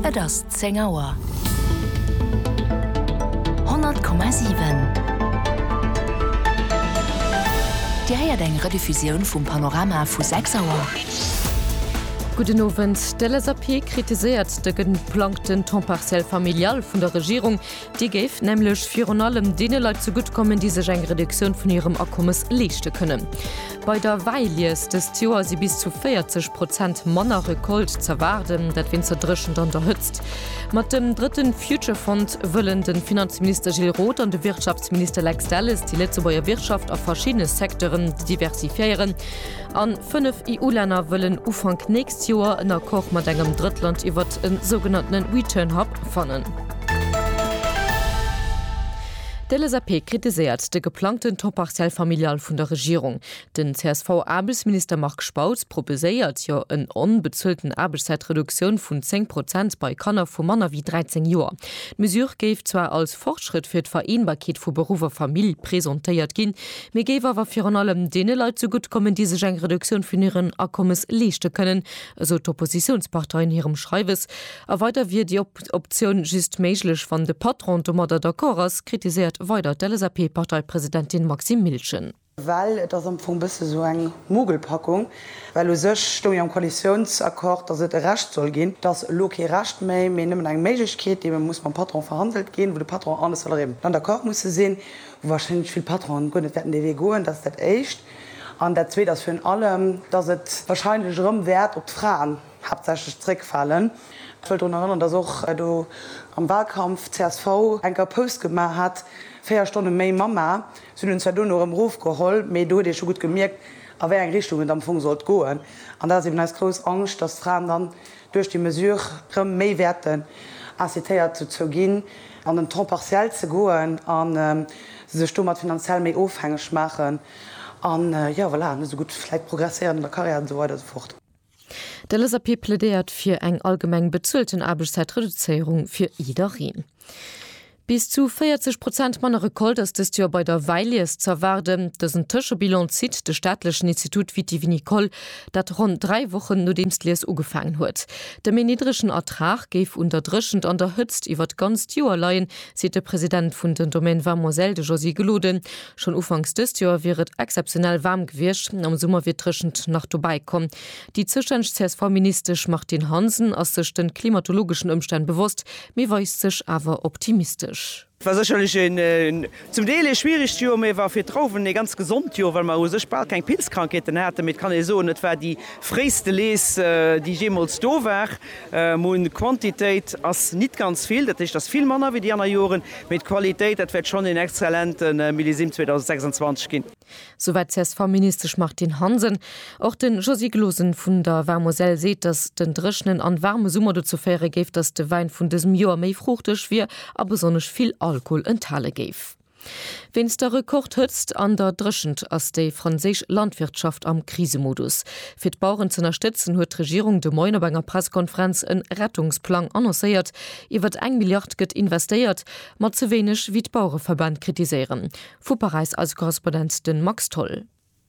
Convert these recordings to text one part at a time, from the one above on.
Et ass 10 Auer. 100,7. Dir héiert eng Rediffusioun vum Panorama vu 6 Auer. Gudden Owend. D'LSAP kritiséiert de geplangten Temps partiel familial vun der Regierung. Déi géif nämlech virun allem deene Leit zegutt kommen, déi sech eng Reduktioun vun hirem Akommes leeschte kënnen. Bei der Wäilies dëst Joer si bis zu 40 Prozent manner Recolte z'erwaarden, dat wéinst der Dréchent an der Hëtzt. Mat dem drëtte Future Fund wëllen de Finanzminister Gilles Roth an de Wirtschaftsminister Lex Delles déi Lëtzebuerger Wirtschaft a verschiddene Secteuren diversifiéieren. An 5 EU-Länner wëllen Ufank nächst Joer en Accord mat engem Drëttland iwwert e sougenanntene Return Hub fannen. D'LSAP kritiséiert de geplangten Taux partiel familial vun der Regierung. Den CSV-Aarbechtsminister Marc Spautz proposéiert jo en onbezuelten Aarbechtszäitreduktioun vun 10 Prozent bei Kanner vu manner wéi 13 Joer. D'Mesure géif zwar als Fortschrëtt fir d'Vereenbarkeet vu Beruff a Famill presentéiert ginn, mee géif awer virun allem deene Leit zegutt kommen, déi sech eng Reduktioun vun hiren Akommes leeschte kënnen, esou d'Oppositiounspartei an hirem Schreiwes. A weider wier déi Optioun just méiglech, wann de Patron domadder d'accord ass, kritiséiert weider d'LSAP-Parteipresidentin Maxime Miltgen. Well et ass am Fong e bësse esou eng Mogelpackung, well u sech stoung jo am Koalitiounsaccord, datt et e Recht soll ginn. Et ass elo kee Recht méi, mee nëmmen eng Méiglechkeet, déi muss mam Patron verhandelt ginn, wou de Patron an de Salariéen dann d'accord musse sinn. wahrscheinlech vill Patronen guer net wäerten dee Wee goen, dat ass dat éischt, an dat zweet ass virun allem, dass et wahrscheinlech erëm wäert op d'Fraen haaptsächlech zréckfalen. Ech wëll drun erënnern, dass och do am Wahlkampf csv enker Pause gemaach hat, véier Stonne méi Mamma, se hunn en zwar duerno erëm erofgeholl, mee do huet ee scho gutt gemierkt, a wéi eng Richtung et am Fong sollt goen, an dat ass eben eis grouss Angscht, dass d'Fraen dann duerch déi Mesure rëm méi wäerten incitéiert dozou ginn, an den Temps partiel ze goen a sech domat finanziell méi ofhängeg maachen an, jo, voilà, net esou gutt vläit progresséieren an der Karriär an esou weider an esou fort. De LSAP plädéiert fir eng allgemeng bezuelten Aarbechtszäitreduzéierung fir jiddereen. Bis zu 40 Prozent manner Recolte ass dëst Joer bei der Wäilies z'erwaarden. Dësen Tëschebilan zitt de staatlechen Institut Vitivinicole, dat ronn dräi Wochen nodeems d'Lies ugefaangen huet. De méi niddregen Ertrag géif un der Dréchent an der Hëtzt iwwer d'ganzt Joer leien, seet de President vun den Domaines Vamoiselles, de Josy Gelode. Schonn ufanks dëst Joer wier et exzeptionell waarm gewiescht, am Summer wier d'Dréchent nach dobäi komm. Déi zoustänneg CSV-Ministesch Martine Hansen ass sech de klimatologeschen Ëmstänn bewosst, mee weist sech awer optimistesch. Et war sécherlech een zum Deel ee schwieregt Joer, mee et war fir d'Trauwen ee ganz gesond Joer, well mer u sech bal keng Pilzkrankheeten haten. Mee et kann ee soen, et war déi fréiste Lees, déi jeemools do war. D'Moun Quantitéit ass nit ganz vill, dat heescht ass vill manner wéi déi anner Joren, mee d'Qualitéit, dat wäert schonn een exzellente Millésime 2026 ginn. Souwäit d'CSV-Ministesch Martine Hansen. Och de Josy Glosen vun der War-Moselle seet, datt den dréchenen an waarme Summer dozou féiere géif, datt de Wäin vun dësem Joer méi fruuchteg wier a besonnesch vill Alkohol enthale géif. Wéinst der Rekordhëtzt an der Dréchent ass déi franséisch Landwirtschaft am Krisemodus. Fir d'Baueren z'ënnerstëtzen, huet d'Regierung de Moien op enger Pressekonferenz en Rettungsplang annoncéiert. Iwwert eng Milliard gëtt investéiert, ma ze wéineg, wéi d'Bauereverbänn kritiséieren. Vu Paräis eise Korrespondent de Max Tholl.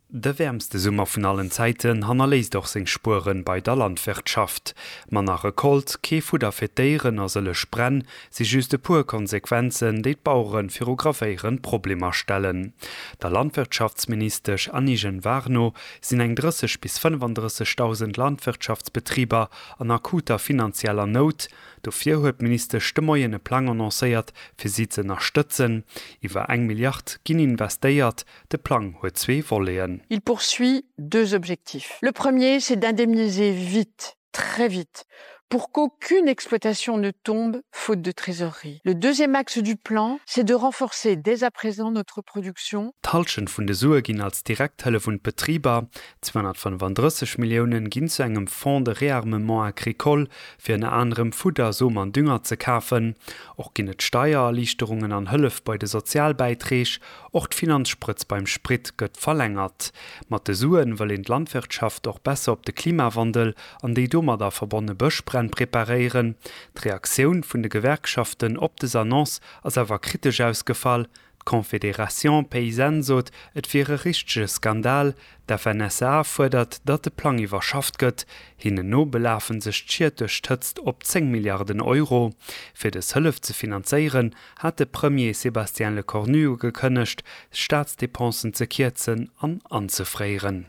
De wäermste Summer vun allen Zäiten hannerléisst och seng Spuere bei der Landwirtschaft. Manner Recolte, kee Fudder fir d'Déieren a sëllech Bränn si just e puer Konsequenzen, déi d'Bauere viru gravéierend Problemer stellen. Der Landwirtschaftsministesch Annie Genevard no sinn eng 30 bis 35.000 Landwirtschaftsbetriber an akuter finanzieller Nout, Dofir huet d'Ministesch de Moien e Plang annoncéiert, fir si ze ënnerstëtzen. Iwwer eng Milliard ginn investéiert. De Plang huet zwee Voleten. Il poursuit deux objectifs. Le premier, c'est d'indemniser vite, très vite, pour qu'aucune exploitation ne tombe faute de trésorerie. Le deuxième axe du plan, c'est de renforcer dès à présent notre production. D'Hallschent vun de Sue ginn als direkt Hëllef un d'Betriber. 235 Milliounen ginn zu engem Fonds de réarmement agricole, fir ënner anerem Fudder, Som an Dünger ze kafen. Och ginn et Steiererliichterungen an Hëllef bei de Sozialbäiträg. Och d'Finanzsprëtz beim Sprit gëtt verlängert. Mat de Suen wëll een d'Landwirtschaft och besser op de Klimawandel an déi domadder verbonne Bëschbränn preparéieren. D'Reaktioun vun de Gewerkschaften op des Annonce ass awer kritesch ausgefall, D'Confédération paysanne sot, et wier e richtege Skandal. D'FNSEA fuerdert, datt de Plang iwwerschafft gëtt. Hinnen no belafe sech d'Schied duerch d'Hëtzt op 10 Milliarden Euro. Fir dës Hëllef ze finanzéieren, hat de Premier Sébastien Lecornu ugekënnegt, d'Staatsdepensen ze kierzen an anzefréieren.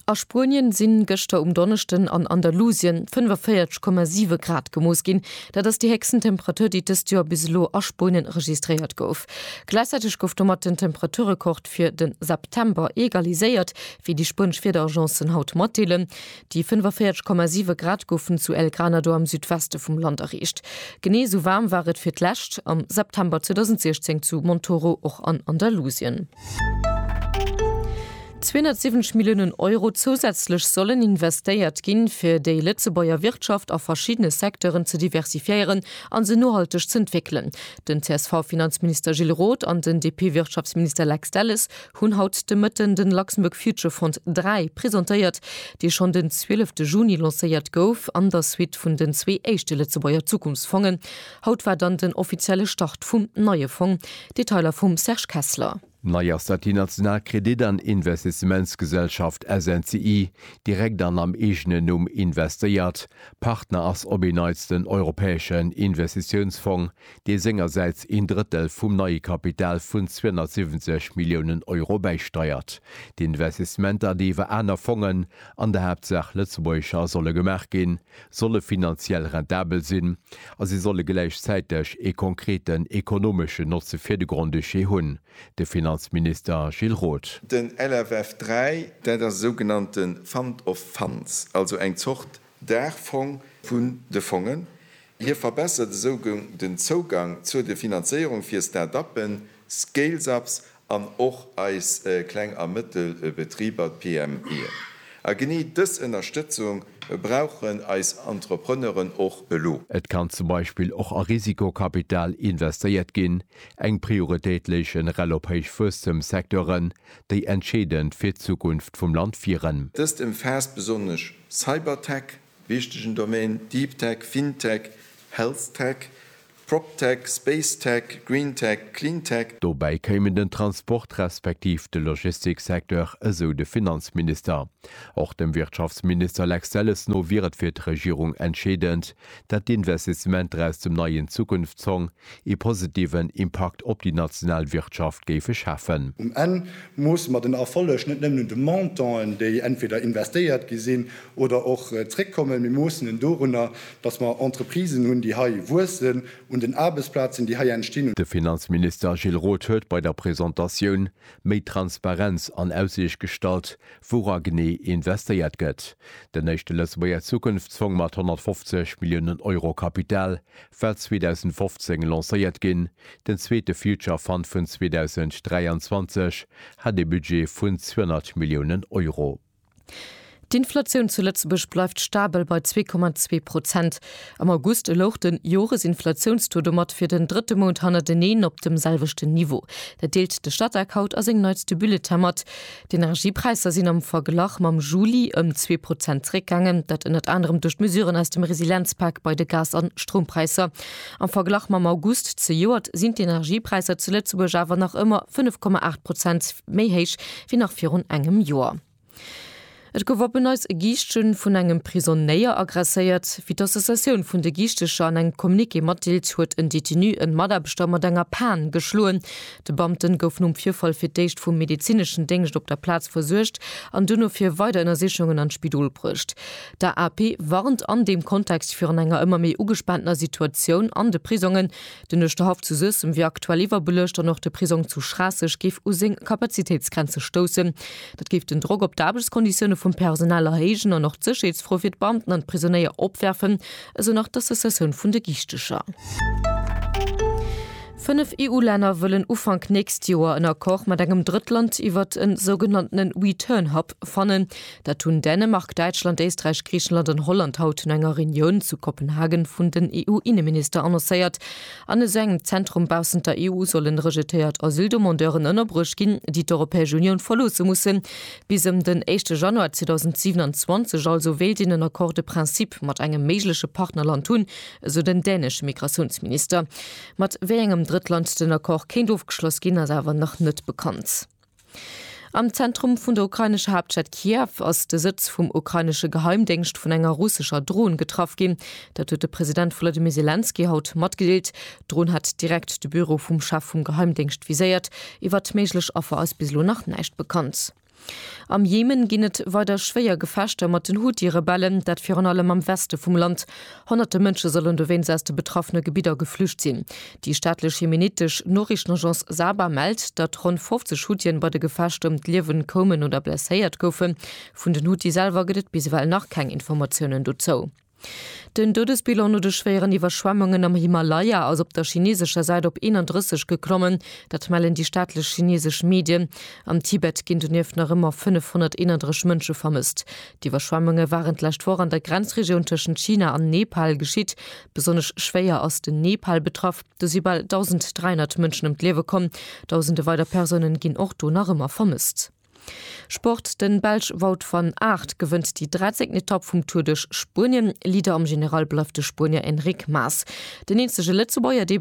A Spuenien sinn gëschter um Donneschden an Andalusien 45,7 Grad gemooss ginn. Dat ass déi héchsten Temperatur, déi dëst Joer bis elo a Spuenien registréiert gouf. Gläichzäiteg gouf domat den Temperaturrekord fir de September egaliséiert, wéi déi spuenesch Wiederagencen haut matdeelen. Déi 45,7 Grad goufen zu El Granado am Südweste vum Land erreecht. Genee esou waarm war et fir d'lescht am September 2016 zu Montoro, och an Andalusien. 270 Milliounen Euro zousätzlech sollen investéiert ginn, fir déi Lëtzebuerger Wirtschaft a verschiddene Secteuren ze diversifiéieren a se nohalteg z'entwéckelen. Den CSV-Finanzminister Gilles Roth an den DP-Wirtschaftsminister Lex Delles hunn haut de Mëtten de Luxembourg Future Fund 3 presentéiert, dee schonn den 12 Juni lancéiert gouf, an der Suite vun den zwee éischte Lëtzebuerger Zukunftsfongen. Haut war dann den offizielle Start vum neie Fong. Detailer vum Serge Kessler. Nei ass, datt déi national Kredit an Investissementsgesellschaft SNCI direkt an am eegenen Numm investéiert. Partner ass op een Neits den Europäeschen Investitiounsfong, dee sengersäits een Drëttel vum neie Kapital vun 270 Milliounen Euro bäisteiert. D'Investissementer, déi iwwer aner Fongen, an der Haaptsaach lëtzebuergescher, solle gemaach ginn, solle finanziell rentabel sinn a se solle gläichzäiteg ee konkreten ekonomeschen Notze fir de Grand-Duché hunn, de Finanzminister Gilles Roth. Den LFF 3, dat ass e sougenannte Fund of Funds, also eng Zort Daachfong vun de Fongen. Hie verbessert esou den Zougang zur de Finanzéierung fir Start-uppen, Scales-ups an och eis kleng a mëttel Betriber, d'PMEen. A genee dës Ënnerstëtzung brauchen eis Entrepreneuren och elo. Et kann zum Beispill och a Risikokapital investéiert ginn. Eng Prioritéit léich generell op héich Wuesstemssecteuren, déi entscheedend fir d'Zukunft vum Land wieren. Dëst ëmfaasst besonnesch Cybertech, Wichtegen Domain, Deep Tech, FinTech, Health Tech, PropTech, Space Tech, Green Tech, Clean Tech. Dobäi kéimen den Transport respektiv de Logistiksecteur, esou de Finanzminister. Och dem Wirtschaftsminister Lex Delles no wier et fir d'Regierung entscheedend, dat d'Investissementer aus dem neien Zukunftsfong, ee positiven Impakt op déi national Wirtschaft géife schafen. Um Enn moosse mer den Erfolleg net nëmmen un de Montanten, déi entweder investéiert gi sinn oder och zréckkommen. Mir moossen en dorunner, datt mer Entreprisen hunn, déi hei wuessen, un den Aarbechtsplazen, déi hei entstinn. De Finanzminister Gilles Roth huet bei der Presentatioun méi Transparenz an Aussiicht gestallt, woura genee investéiert gëtt. Den éischte Lëtzebuerger Zukunftsfong mat 150 Milliounen Euro Kapital war 2015 lancéiert ginn, den zweete Future Fund vun 2023 hat ee Budget vun 200 Milliounen Euro. D'Inflatioun zu Lëtzebuerg bleift stabel bei 2,2 Prozent. Am August louch de Joresinflatiounstaux domat fir den drëtte Mount hannerteneen op dem selwechten Niveau. Dat deelt de Statec haut a sengem neitste Bulletin mat. D'Energiepräisser sinn am Verglach mam Juli ëm zwee Prozent zeréckgaangen. Dat ënnert anerem duerch d'Mesuren aus dem Resilienzpak bei de Gas an Stroumpräisser. Am Verglach mam August zejoert sinn d'Energiepräisser zu Lëtzebuerg awer nach ëmmer 5,8 Prozent méi héich wéi nach virun engem Joer. Et gouf op en Neits e Giischtje vun engem Prisonnéier aggresséiert. Wéi d'Associatioun vun de Giichtecher an engem Communiqué matdeelt, huet en Detenu en Mataarbechter mat enger Pan geschloen. De Beamte gouf nom Virfall fir d'éischt vum medezineschen Déngscht op der Plaz versuergt an duerno fir weider Ënnersichungen an d'Spidol bruecht. D'AAP warnt an deem Kontext virun enger ëmmer méi ugespaantener Situatioun an de Prisongen. Den Uerschterhaff zu Suessem wier aktuell iwwerbeluecht an och de Prisong zu Schraasseg géif u seng Kapazitéitsgrenze stoussen. Dat géif den Drock op d'Aarbechtskonditioune vum Personal erhéijen an och d'Sécherheetsfro fir d'Beamten an d'Prisonéier opwerfen, esou nach d'Associatioun vun de Giichtecher. Fënnef EU-Länner wëllen Ufank nächst Joer en Accord mat engem Drëttland iwwert e sougenannte Return Hub fannen. Dat hunn Dänemark, Däitschland, Éisträich, Griichenland an Holland haut no enger Reunioun zu Kopenhagen vun den EU-Inneminister annoncéiert. An esou engem Zentrum baussent der EU sollen rejetéiert Asyldemandeuren ënnerbruecht ginn, déi d'Europäesch Unioun verloosse mussen. Bis ëm den éischte Januar 2027 also wéilt een en Accord de principe mat engem méigleche Partnerland hunn, esou den dänesche Migratiounsminister. Mat wéi engem Drëttland den Accord kéint ofgeschloss ginn, ass awer nach net bekannt. Am Zentrum vun der ukrainescher Haaptstad Kiew ass de Sëtz vum ukrainesche Geheimdéngscht vun enger russescher Dron getraff ginn. Dat huet de President Wolodymyr Selenskyj haut matgedeelt. D'Dron hat direkt de Büro vum Chef vum Geheimdéngscht viséiert. Iwwert méiglech Affer ass bis elo nach näischt bekannt. Am Jemen ginn et weider schwéier Gefechter mat den Huthi-Rebellen, dat virun allem am Weste vum Land. Honnerte Mënsche sollen dowéinst aus de betraffene Gebidder geflücht sinn. Déi staatlech jemenitesch Noriichtenagence Saba mellt, datt ronn 50 Huthien bei de Gefechter ëm d'Liewen koumen oder blesséiert goufen. Vun den Huthi selwer gëtt et bis ewell nach keng Informatiounen dozou. Den Doudesbilan no de schwéieren Iwwerschwemmungen am Himalaya ass op der chineesescher Säit op 31 geklommen. Dat mellen déi staatlech chineesesch Medien. Am Tibet ginn donieft nach ëmmer 531 Mënsche vermësst. D'Iwwerschwemmunge waren d'lescht Woch an der Grenzregioun tëschent China an Nepal geschitt. Besonnesch schwéier ass den Nepal betraff. Do si bal 1.300 Mënschen ëm d'Liewe komm. Dausende weider Persounen ginn och do nach ëmmer vermësst. Sport, De Belsch Wout van Aert gewënnt déi 13. Etapp vum Tour duerch Spuenien. Leader am General bleift de Spuenier Enric Mas. Den eenzege Lëtzebuerger, dee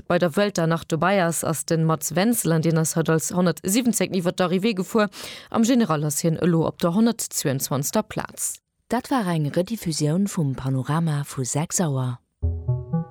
bei der Vuelta nach dobäi ass, ass de Mats Wenzel an deen ass haut als 117. iwwer d'Arrivée gefuer. Am General ass hien elo op der 122. Plaz. Dat war eng Rediffusioun vum Panorama vu 6 Auer.